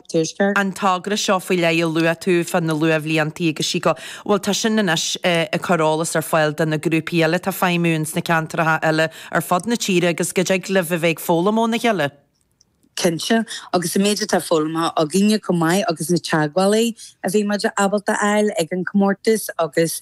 Tuaisceart. an togra seo faoi leith a luaigh tú fá na luathbhliantaí agus sí go bhfuil tá sin anois ag cur eolas ar fáil do na grúpaí eile atá ag feidhmiú ins na ceantracha eile ar fud na tíre agus go dtig libh a bheith ag foghlaim óna chéile. Cinnte, agus an méid atá foghlamtha againne chomh maith agus na teagmhálaí a bhí muid ábalta a fháil ag an chomórtas agus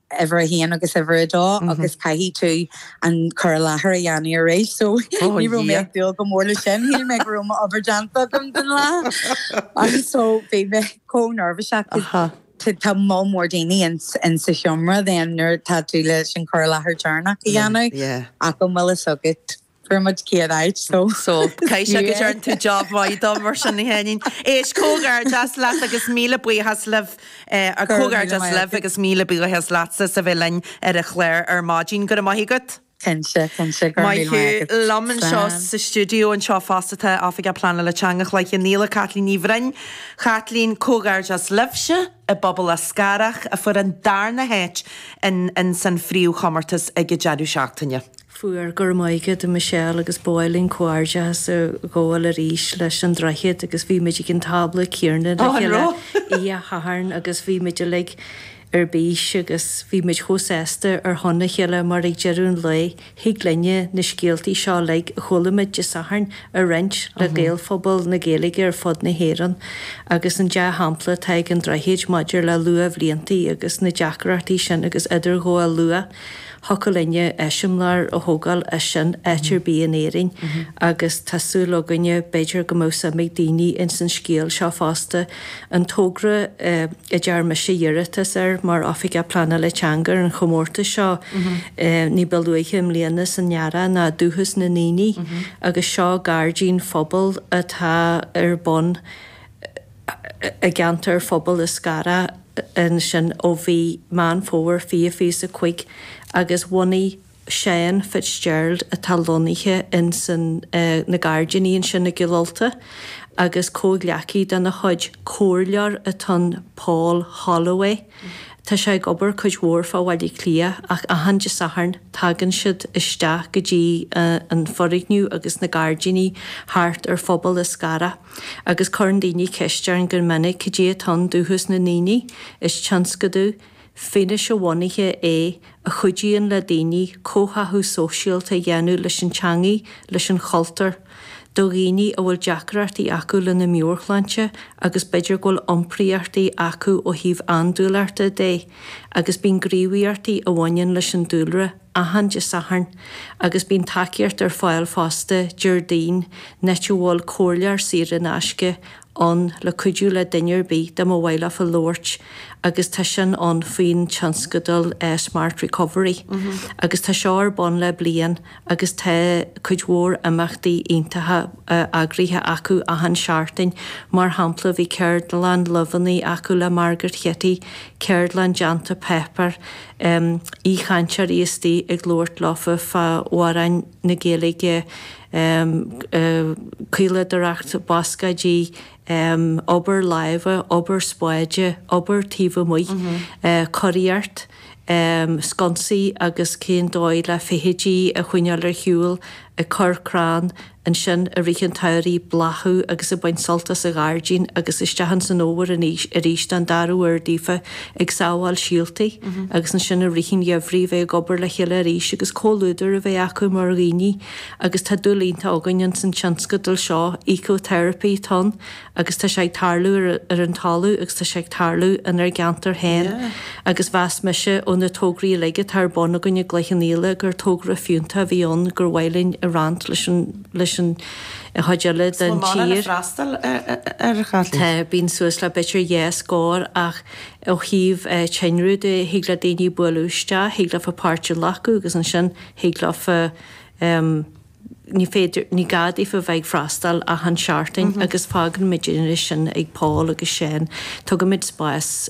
uimhir a haon agus uimhir a dó agus caithfidh tú an cur i láthair a dhéanamh arís so ní raibh mé ag dúil go mór leis sin, shíl mé go raibh m'obair déanta agam don lá agus so bhí mé chomh neirbhíseach cause tá moll mór daoine insa seomra then nuair atá tú leis an cur i láthair deireanach a dhéanamh ach an bhfuil fhios agat. Fuair muid céad áit so. So, caithfidh sé go dtearn tú job mhaith de mar sin a Sheáinín. Éist, comhghairdeas leat agus míle buíochas libh, eh, Go raibh míle maith agat. Comhghairdeas libh agus míle buíochas leatsa as a bheith linn ar an chlár ar maidin. Go raibh maith agat. Cinnte, cinnte, go raibh míle maith agat. Maith thú. Slán. Liom anseo sa stiúideo anseo fosta tá Oifigeach Pleanála Teanga Chloich Cheann Fhaola, Caitlín Ní Bhroin. Chaitlín, comhghairdeas libhse. I bPobal Eascarrach a fuair an darna háit insan phríomhchomórtas ag an deireadh seachtaine. Fuair, go raibh maith agat a Michelle agus ba mhaith linn comhghairdeachas a ghabháil arís leis an Droichead agus bhí muid ag an tábla céanna le chéile oíche Shathairn agus bhí muid uilig ar bís agus bhí muid chomh sásta ar shon a chéile mar ag deireadh an lae Thig linne na scéaltaí seo uilig a chuala muid Dé Sathairn a roinnt le Gaelphobal na Gaeilge ar fud na hÉireann agus an dea-shampla atá ag an Droichead maidir le luathbhliantaí agus na deacrachtaí sin agus idirghabháil luath, thiocfadh linne eiseamláir a thógáil as sin áit ar bith in Éirinn agus tá súil againne b'fhéidir go mbeadh suim ag daoine ins an scéal seo fosta An togra a dtearn mise iarratas air mar Oifigeach Pleanála Teanga ar an chomórtas seo ní ba luaithe i mbliana san earrach ná Dúchas na nDaoine agus seo gairdín phobail atá ar bun i gceantar Phobal Eascarrach ansin ó mhí Meán Fómhair fiche fiche is a cúig agus bhunaigh Seán Fitzgerald atá lonnaithe ins na gairdíní ansin i gCill Ulta agus comhghleacaí dena chuid, comhairleoir atá ann, Paul Holloway. Tá sé ag obair cuid mhór fá Bhaile Átha Cliath ach achan Dé Sathairn tagann siad isteach go dtí an foirgneamh agus na gairdíní thart ar Phobal Eascarrach agus cuireann daoine ceist orainn go minic cad é atá ann, Dúchas na nDaoine. Is tionscadal fianaise-bhunaithe é a chuidíonn le daoine comhtháthú sóisialta a dhéanamh leis an teangaidh, leis an chultúr, do dhaoine a bhfuil deacrachtaí acu lena meabhairshláinte agus b'fhéidir go bhfuil iompraíochtaí acu ó thaobh andúileachta de agus bíonn gníomhaíochtaí a bhaineann leis an dúlra achan Dé Sathairn agus bíonn tacaíocht ar fáil fosta Déardaoin, an áit a bhfuil comhairleoir saor in aisce á ann le cuidiú le duine ar bith ar maith leofa labhairt agus tá sin ann faoin tionscadal Smart Recovery agus tá seo ar bun le bliain agus tá cuid mhór imeachtaí iontacha eagraithe acu achan seachtain mar shampla bhí ceardlann luibheanna acu le Margaret Kitty, ceardlann déanta páipéir, aoichainteoirí istigh ag labhairt leofa fá amhráin. na Gaeilge caoladóireacht bascaeidí obair láimhe obair spáide obair taobh amuigh cóiríocht sconsaí agus cén dóigh le feithidí a choinneáil ar shiúl ag cur crann ansin i rith an tsamhraidh bláthú agus ag baint sult as an ghairdín agus isteach ins an fhómhar arís an darú uair daofa ag sábháil síoltaí agus ansin i rith an gheimhridh a bheidh ag obair le chéile arís agus comhluadar a bheith acu mar dhaoine agus tá dúil iontach againn ins an tionscadal seo Eco Therapy Tonn agus tá sé ag tarlú ar an talamh agus tá sé ag tarlú inár gceantar féin agus mheas mise ó na tograí uilig atá ar bun againn i gCloich Cheann Fhaola gur togra fiúntach a bhí ann gur mhaith linn a roinnt leis an chuid eile den tír, tá bíonn suas le b'fhéidir dhá scór ach ó thaobh tinreamh de thig le daoine bualadh isteach, thig leofa páirt a ghlacadh agus ansin thig leofa ní féidir, ní gá daofa bheith ag freastáil achan seachtain agus fágaimid sin ag Paul agus sin, tugaimid spás.